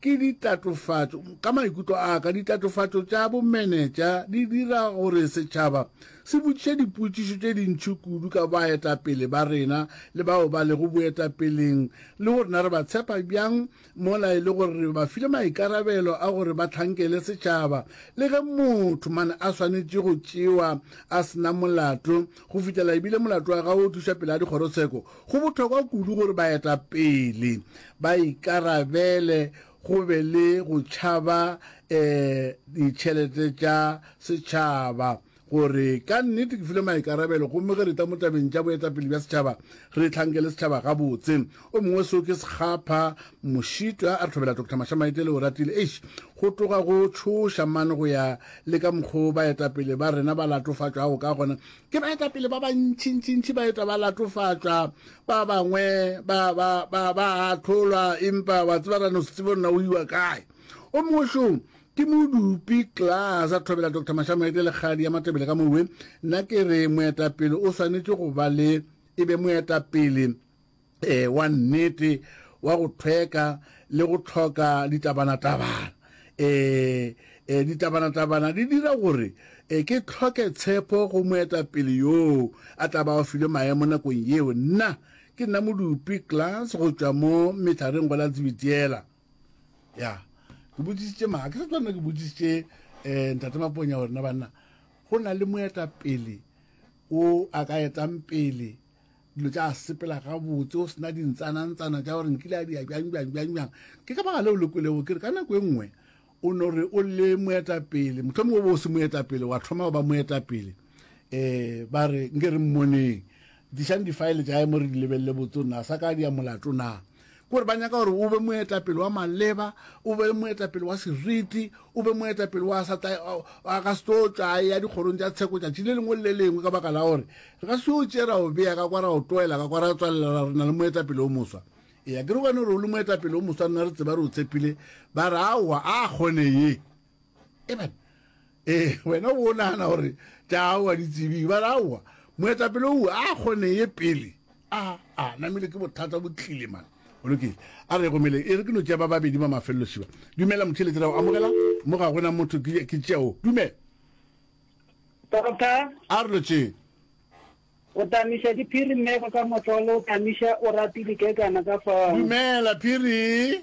Ke ditatofatšo. Ka maikutlo a ka, ditatofatšo tša bomenetša di dira gore setšhaba se botšiše dipotšišo tše dintši kudu ka baetapele ba rena le bao ba lego boetapeleng le gore na re ba tshepa bjang mola e le gore re ba file maikarabelo a gore ba hlankele setšhaba le ge motho man a swanetše go tšewa a se na molato go fihlela ebile molato wa gagwe o tlišwa pele ga dikgorotsheko Go bohlokwa kudu gore baetapele ba ikarabele go be le go tšhaba um ditšhelete tša setšhaba gore ka nnete ke file maikarabelo gomme ge re tla mo tabeng tša boetapele bja setšhaba re hlankele setšhaba gabotse. O mongwe seo ke sekgapha mošitwa a re hlobela Doctor Mashamaite le Oratile eish go tloga go tšhoša mane go ya le ka mokgo baetapele ba rena ba latofatšwago ka gona ke baetapele ba bantšintšintši ba etwa ba latofatšwa ba bangwe ba ba ba ba atlholwa empa wa tseba rano se tsebo nna o iwa kae o mongwešong ke modupi class a thobela dr mashamoete lekgadi ya matebele ka mowe nna ke re moetapele o swanetše go ba le e be moetapele e, wa nnete, wa go thweka le go tlhoka ditabanatabana. E, e, ditabanatabana di dira gore e, ke tlhoke tshepo go moetapele yoo a tla ba o filwe maemo nakong yeo. Nna ke nna modupi class go tšwa mo methareng go la tsebitiela ya ke botsisitše ma ke sa tswanna ke botsisitše um ntate maponya gore na banna go na le moetapele o a ka etang pele dilo tša sepela gabotse o sena dintsanantsana tša gore nkile a dia bjang bjang bjang bjang ke ka baga leo le kwelego ke re ka nako e nngwe o no re o le moetapele motlho mongwe bo o se moetapele wa thoma go ba moetapele um ba re nke re mmoneng dišang difaele tša emo re di lebelele botse o na sa ka dia molato na gore ba nyaka gore o be moetapele wa maleba o be moetapele wa seriti o be moetapele wa sa tla a ka se tlo tšwa a ya dikgorong tša tsheko tšatši le lengwe le le lengwe ka baka la gore re ka se o tšee ra o beya ka kwa ra o tloela ka kwa ra tswalela ra re na le moetapele o moswa eya ke re gone gore o le moetapele o moswa nna re tseba re o tshepile ba re aowa a kgone ye amen ee wena o bo nagana gore taawa ditsebing ba raowa moetapele o a kgone ye pele a a namile ke bothata bo tlile mane o lokile a re gomele e re ke no tšea ba babedi ba mafelelo šiba dumela motšheletse ra o amogela mo ga gona motho ke tšeo dumela tota a re lotšeng o tamiša diphiri mmego ka motlolo o tamiša o rati dikekana ka fao dumela phiri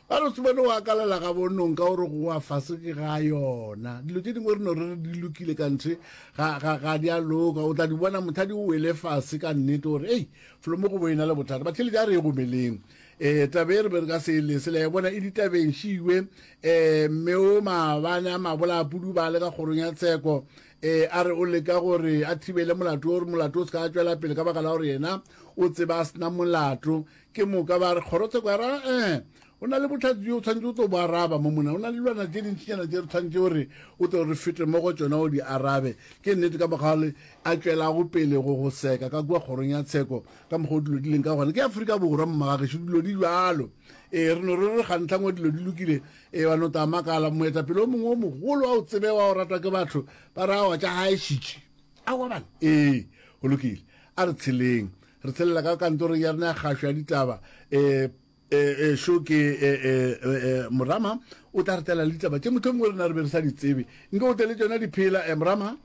Ba re Sumane o akalela gabo nonka o re go wa fase ke ga yona. Dilo tše dingwe re no re re di lokile ka nthe ga, ga, ga di a loka. O tla di bona mothadi o wele fase ka nnete o re, Ei, folomo go bo e na le bothata. Batheeletši a re ye go meleng. Eh, taba e re be re ka se e lese. Le a e bona e ditabeng šiwe. Eh, mme o maabane a mabola a pudubale ka kgorong ya tsheko. Eh, a re o leka gore a thibele molato o re molato o se ka tšwela pele ka baka la gore yena o tseba a sena molato. Ke moka ba re, Kgorotsheko ya rena, ee, go na le bohlatse bjo o tshwanetše o tlo bo araba mo mona. Go na le dilwana tše dintšinyana tše re tshwanetše gore o tlo re fete mo go tšona o di arabe. Ke nnete, ka mokgwa le a tšwelago pele go go seka ka kua kgorong ya tsheko, ka mokgwa o dilo di leng ka gona. Ke Afrika Borwa, mmagagešo, dilo di bjalo. Ee, re no re re gantlhangwe dilo di lokile, ee, wa no tla makala, moetapele o mongwe o mogolo wa o tsebe wa o ratwa ke batho, ba re aowa tša gaešitše. Aowa bana, ee, go lokile, a re tsheleng. re tshelela ka kantorong ya rena ya kgašo ya ditaba um šo ke morama o tla re tela le ditaba tše mohlomongwe rena re be re sa di tsebe nke o tele tsona diphela morama